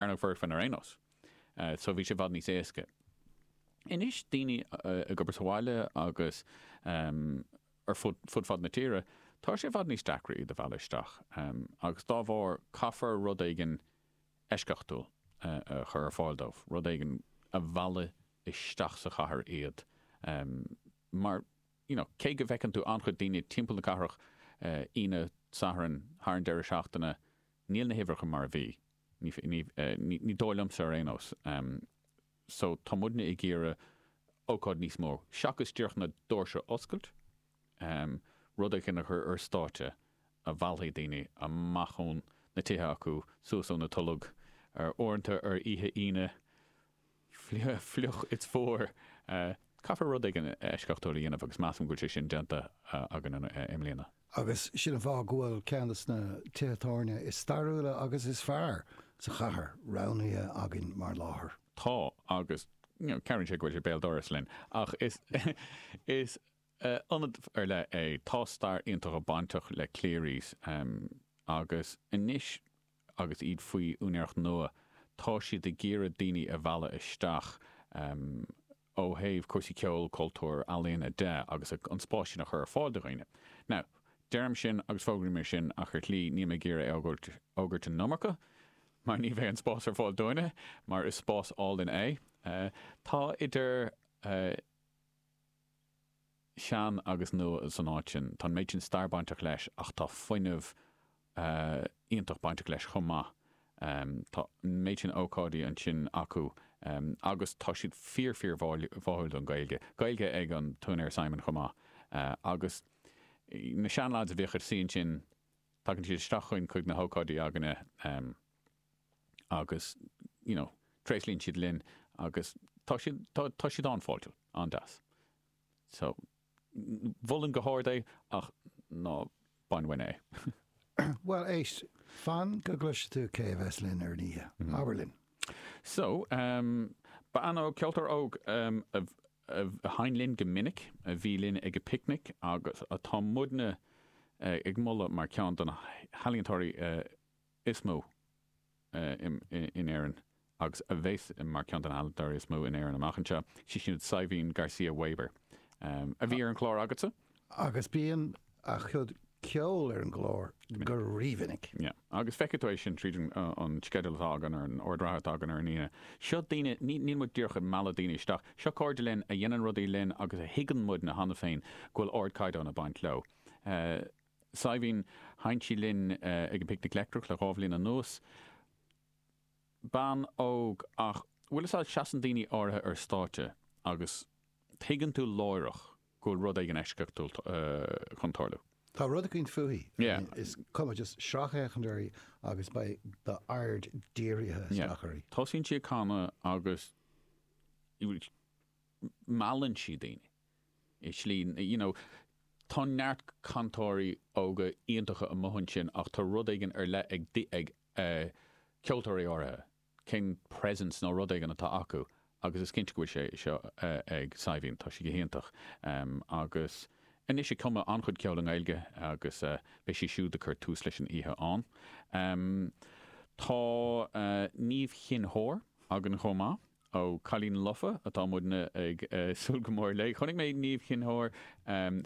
ar na foircfinn ar aon nós. So bhí sé i bhfad níos éasca. Anois daoine ag obair sa bhaile agus ar fud fud na tíre, tá sé i bhfad níos deacra iad a mhealladh isteach agus dá bharr caithfear rud éigin eisceachtúil a chur ar fáil dóibh, rud éigin a mheallfaidh isteach sa chathair iad mar you know cé go bhfeiceann tú an-chuid daoine timpeall na cathrach Aoine, Satharn, thar an deireadh seachtaine, níl na huimhreacha mar a bhí. Ní dóigh liomsa ar aon nós. So tá muidne ag iarraidh ócáid níos mó, seachas díreach na doirse a oscailt, rud éigin a chur ar stáitse a mheallfaidh daoine amach ó na tithe acu, suas ó na toilg, uaireanta ar oíche Aoine, fliuch, it's fuar. Caithfear rud éigin eisceachtúil a dhéanamh agus measaim go bhfuil sé sin déanta againn i mbliana. Agus sin an fáth go bhfuil ceann de na tithe tábhairne is stairiúla agus is fearr sa chathair roghnaithe againn mar láthair. Tá, agus cabhraíonn sé go bhfuil sé béal dorais linn. Ach is ionad ar leith é. Tá stair iontach bainteach le Cleary's agus anois agus iad faoi úinéireacht nua, tá siad ag iarraidh daoine a mhealladh isteach ó thaobh cúrsaí ceoil, cultúir, ealaíona de agus an spás sin a chur ar fáil do dhaoine. Now, deirim sin agus fógraím é sin ach ar shlí níl mé ag iarraidh a fhógairt an iomarca mar ní bheidh an spás ar fáil dúinne mar is spás álainn é. Tá idir. shean agus nua san áit sin. Tá an méid sin stair bainteach leis ach tá fuinneamh iontach bainteach leis chomh maith. Tá an méid sin ócáidí ansin acu agus tá siad fíor fíor bháúil don Ghaeilge. Gaeilge ag an t-úinéir Simon chomh maith agus na seanleaids a bhíodh ag suí ansin, tagann siad isteach chugainn chuig na hócáidí againne. agus, you know, tréaslaíonn siad linn agus tá siad, tá, tá siad an-fháiltiúil, an-deas. So, mholfainn go hard é ach ná bain uainn é. Bhuel, éist, fan go gcloise tú cé a bheas linn ar an oíche. Abair linn. So, ehm, beidh ann ó ceoltóir óg a, a sheinn linn go minic, a bhí linn ag an bpicnic agus atá muidne ag moladh mar ceann de na healaíontóirí is mó in Éirinn agus a bheas mar cheann de na healaíontóirí is mó in Éirinn amach anseo. Sí siúd Saidhbhín Garcia Webber a bhí ar an chlár agatsa. Agus bíonn a cuid ceoil ar an gclár go rímhinic. Yeah. Agus feicfidh tú é sin tríd an sceideal atá againn ar an ord reatha atá againn ar an Aoine. Seo daoine, níl muid díreach ag mealladh daoine isteach, seo cairde linn a dhéanann rudaí linn agus a thuigeann muidne cheana féin go bhfuil ardchaighdeán ag baint leo. Saidhbhín, Sheinn sí linn ag an bPicnic Leictreach le dhá bhliain anuas. Bean óg ach, bhuel is ea, seasann daoine áirithe ar stáitse agus tuigeann tú láithreach go bhfuil rud éigin eisceachtúil chun tarlú. Tá rud eicínt fúithi, is cuma, just sracfhéachaint uirthi agus beidh d'aird dírithe isteach uirthi. Tosaíonn sí ag canadh agus meallann sí daoine. i slí, you know. Tá neart cantóirí óga iontacha amuigh ansin ach tá rud éigin ar leith ag, ag eh, ceoltóirí áirithe, cén presence nó rud éigin atá acu agus is cinnte go bhfuil sé seo eh, ag Saidhbhín, tá sí go hiontach em agus anois ag cumadh an-chuid ceoil i nGaeilge agus eh, beidh sí siúd ag cur tús leis an oíche ann. Em, tá eh, Niamh Chinn Óir againn chomh maith. Ó Cailín Lofa atá muidne ag súil go mór léi. Chonaic mé Niamh Chinn Óir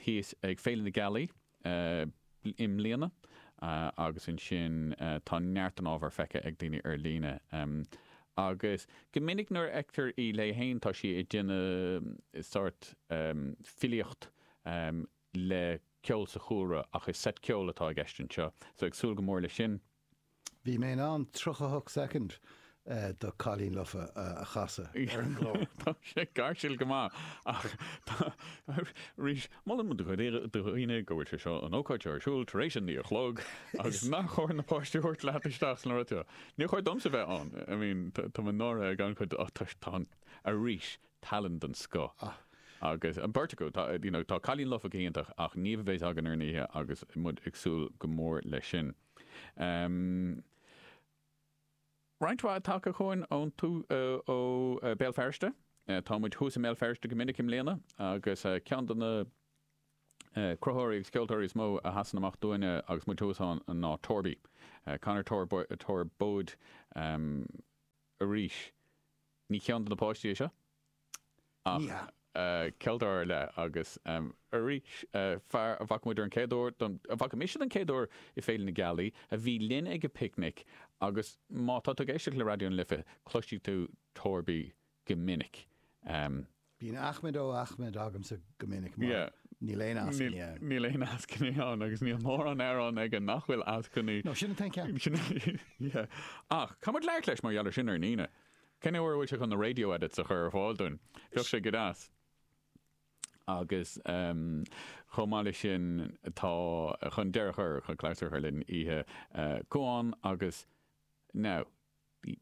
thíos ag Féile na Gealaí i mbliana agus ansin tá neart den ábhar feicthe ag daoine ar líne agus go minic nuair a fheictear í léi féin tá sí ag déanamh sórt filíocht le ceol sa chúlra ach is seit ceoil atá i gceist anseo so ag súil go mór leis sin. Bhí mé in ann 38 soicind de 'Cailín Lofa' a chasadh ar an gclár. Tá sé gáirsiúil go maith ach tá, arís, molann muid do dhaoine go bhfuil sé seo, an ócáid seo ar siúl tar éis a naoi a chlog agus nach chóir na páistí a thabhairt leat isteach sna rudaí seo. Níor chóir domsa bheith ann, I mean, tá mé náirithe ag an-chuid ach tá, tá, arís, tallann den scoth agus an beirt acu, tá, you know, tá Cailín Lofa go hiontach ach Niamh a bheas againn ar an oíche agus muid ag súil go mór leis sin. Amh, roinnt mhaith tagtha chugainn ón, tú, ó Béal Feirste. Tá muid thuas i mBéal Feirste go minic i mbliana agus ceann de na cruthaitheoirí agus ceoltóirí is mó a sheasann amach dúinne agus muid thuas ann ná Torby, Conor Torbóid arís. Ní ceann do na páistí é seo? ach ceoltóir ar leith agus arís fear a bhfaca muid ar an chéad uair, a bhfaca mise den chéad uair i Féile na Gealaí, a bhí linn ag an bPicnic agus má tá tú ag éisteacht le Raidió na Life, cloisfidh tú Torby go minic. Bíonn Ahmed ó Ahmed agamsa go minic mar níl aon eascainí ann. Níl aon eascainí ann agus níl mórán amhrán aige nach bhfuil eascainí. No, sin an t-aon ceann. Ach, caithfidh muid labhairt leis mar gheall ar sin ar an Aoine. Cén uair a bhfuil sé chun na radio edits a chur ar fáil dúinn? Bheadh sé go deas. Agus chomh maith leis sin, tá, chun deireadh a chur, chun clabhsúr a chur linn oíche Cuan agus now,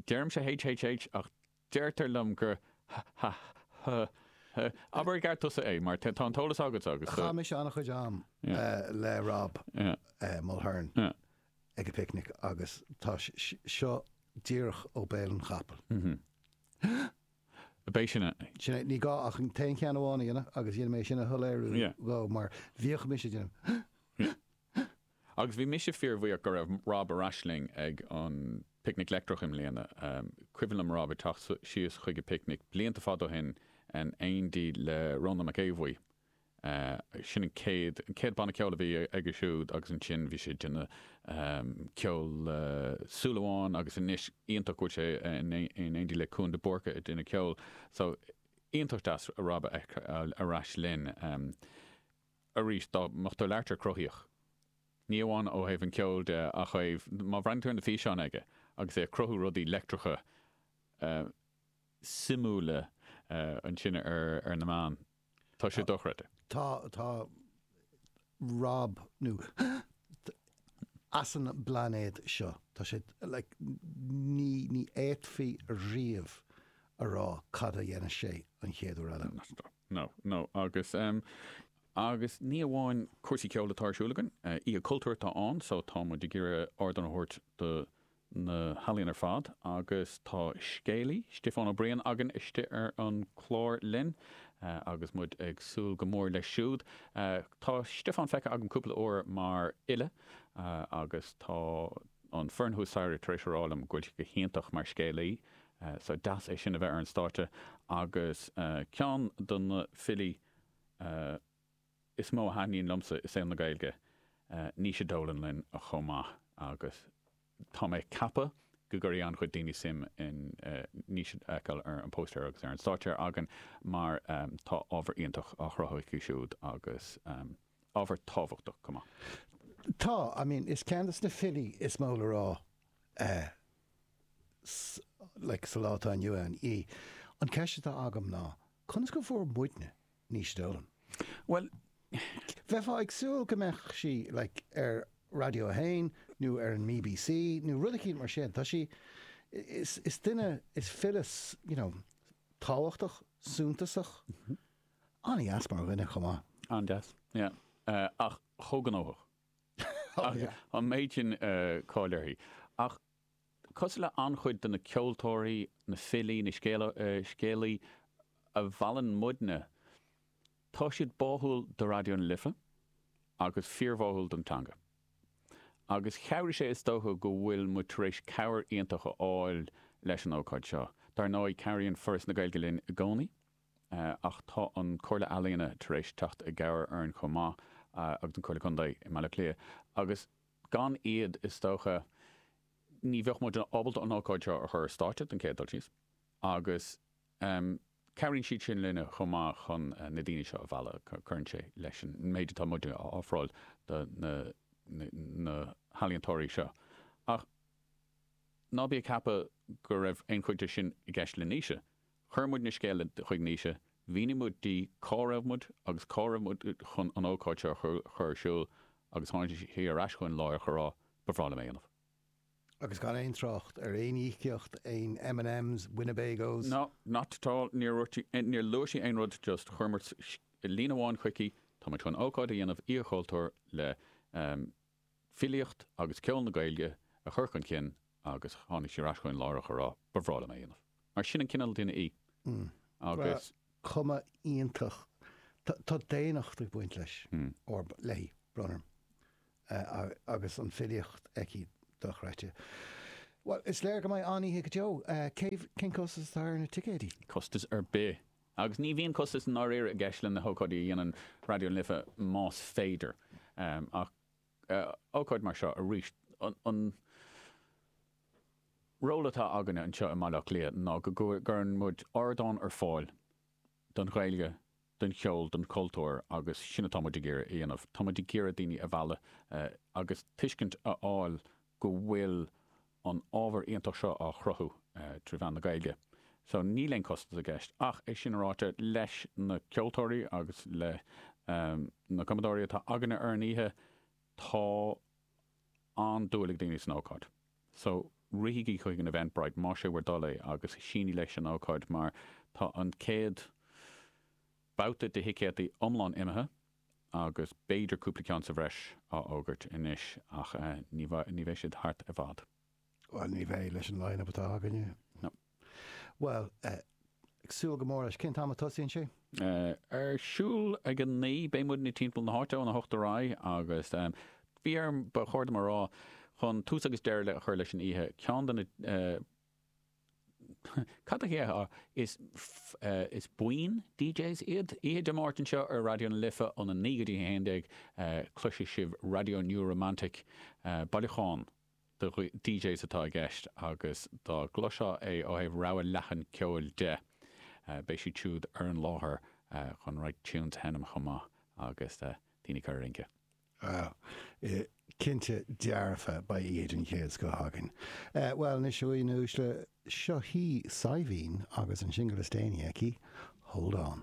deirimse HHH ach deirtear liom gur hh. Abair i gceart tusa é mar tá an t-eolas agatsa agus. Chaith mise an-chuid am le Rob Mulhern. ag an bPicnic agus tá seo díreach ó bhéal an chapaill. B'é sin é. Sin é, ní gá ach an t-aon cheann amháin a dhéanamh agus dhéanfaidh mé sin a shoiléiriú dhó mar bhíodh mise ag déanamh. Agus bhí mise fíorbhuíoch go raibh Rob ar ais linn ag an bPicnic Leictreach i mbliana. Cuimhin liom Rob ag teacht síos chuig an bPicnic blianta fada ó shin in éindí le Rónán Mac Aodha Bhuí, sin an chéad, an chéad bhanna ceoil a bhí aige siúd agus ansin bhí sé ag déanamh ceol le Súil Amháin agus anois iontach go bhfuil sé in éindí le Cuan de Búrca ag déanamh ceoil so iontach deas Rob a fheiceáil ar ais linn arís dá mbeadh tú ag labhairt ar cruthaíocht ní amháin ó thaobh an cheoil de ach ó thaobh má bhreathnaíonn tú ar na físeáin aige agus é ag cruthú rudaí leictreacha suimiúla ansin ar na meáin. Tá sé dochreidte. Tá, tá Rob, nó as an bpláinéad seo. Tá sé, like, ní, ní fhéadfaí riamh a rá cad a dhéanfas sé an chéad uair eile. No, no, agus, em, agus ní amháin cúrsaí ceoil atá ar siúl againn, eh, oíche cultúir atá ann, so tá muid ag iarraidh ardán a thabhairt do na healaíon ar fad agus tá scéalaí, Stiofán Ó Briain, againn istigh ar an chlár linn agus muid ag súil go mór leis siúd. Tá Stiofán feicthe agam cúpla uair mar fhile agus tá an foireann thuas staighre tar éis a rá liom go bhfuil sé go hiontach mar scéalaí so deas é sin a bheith ar an stáitse agus ceann de na filí a is mó a thaitníonn liomsa i saol na Gaeilge, Naoise Dolan linn chomh maith agus tá mé ag ceapadh go gcuirfidh an-chuid daoine suim i Naoise a fheiceáil ar an póstaer agus ar an stáitse againn mar tá ábhar iontach á chruthú aici siúd agus ábhar tábhachtach chomh maith. Tá, I mean, is ceann de na filí is mó le rá eh like sa lá atá inniu ann í. An ceist atá agam ná conas go bhfuair muidne, Naoise Dolan. Bhuel, bheifeá ag súil go mbeadh sí, like, ar Raidió a hAon nó ar an BBC nó rud eicínt mar sin. Tá sí, is, is duine, is file, you know, tábhachtach, suntasach, an-deas mar dhuine chomh maith. An-deas, yeah, ach chomh gnóthach. An méid sin cáil uirthi. Ach cosúil le an-chuid de na ceoltóirí, na filí, na scéalaithe a mheallann muidne, tá siad báúil do Raidió na Life agus fíorbháúil don teanga. Agus chabhraigh sé is dócha go bhfuil muid tar éis cabhair iontach a fháil leis an ócáid seo. Dar ndóigh, cabhraíonn Foras na Gaeilge linn i gcónaí ach tá an Chomhairle Ealaíona tar éis teacht i gcabhair orainn chomh maith agus an Chomhairle Contae i mBaile Átha Cliath agus Gan iad, is dócha, ní bheadh muid ábalta an ócáid seo a chur ar stáitse den chéad dul síos agus cabhraíonn siad sin linne chomh maith chun na daoine seo a mhealladh. Cuireann sé leis an méid atá muid a ofráil do na healaíontóirí seo. Ach ná bí ag ceapadh go raibh aon chuid dó sin i gceist le Naoise. Chuir muid na scéala chuig Naoise, mhínigh muid di cá raibh muid agus cá raibh muid chun an ócáid seo a chur ar siúl agus tháinig sí ar ais chugainn láithreach a rá, Ba bhreá liom é a dhéanamh. Agus gan aon trácht ar aon íocaíocht, aon M and M's, Winnebagos? No, not at all, níor luaigh sí aon rud, just chuir muid líne amháin chuici, Tá muid chun ócáid a dhéanamh, Oíche Chultúir le filíocht agus ceol na Gaeilge a chur chun cinn agus tháinig sí ar ais chugainn láithreach a rá ba bhreá liom é a dhéanamh. Mar sin an cineál duine í agus. Chomh hiontach. Tá daonnacht ag baint leis, léi, brón orm, agus an filíocht aici dochreidte. Bhuel, is léir go mbeidh an-oíche go deo. Cén costas atá ar na ticéid? Costas ar bith Agus ní bhíonn costas i ndáiríre i gceist le na hócáidí a dhéanann Raidió na Life más féidir ach ócáid mar seo arís, an ról atá againne anseo i mBaile Átha Cliath ná go gcuireann muid ardán ar fáil don Ghaeilge, don cheol, don chultúr agus sin atá muid ag iarraidh a dhéanamh. Tá muid ag iarraidh daoine a mhealladh agus tuiscint a fháil go bhfuil an ábhar iontach seo á chruthú trí mheán na Gaeilge so níl aon costas i gceist ach é sin ráite, leis na ceoltóirí agus le na cumadóirí atá againne ar an oíche, tá an-dúil ag daoine san ócáid so rithígí chuig an Eventbrite más sé bhur dtoil é agus sínigh leis an ócáid mar tá an chéad babhta de thicéadaí iomlán imithe. agus b'fhéidir cúpla ceann sa bhreis á fhógairt anois, ach ní bheidh siad thart i bhfad. Bhuel, ní bheidh, leis an line-up atá againne. No. Bhuel, ag súil go mór leis. Cén t-am a tosaíonn sé? Ar siúl ag a naoi. Beidh muidne timpeall na háite ón a hocht ar aghaidh agus bhí ar, ba chóir dom a rá, chun tús agus deireadh a chur leis an oíche, ceann de na, Cad a dhéarfá? Is buíon DJs iad. Oíche Dé Máirt anseo ar Raidió na Life ón 9 go dtí 11, cloisfidh sibh Radio New Romantic. Bailiúchán de DJs atá i gceist agus dá gcloisfeá é ó thaobh rogha leathan ceoil de, beidh siad siúd ar an láthair chun roinnt tunes a sheinm chomh maith agus daoine a chur ag rince. Á, cinnte dearfa, beidh oíche den chéad scoth againn. Bhuel, anois, a dhaoine uaisle, seo hí Saidhbhín agus an singil is déanaí aici, Hold On.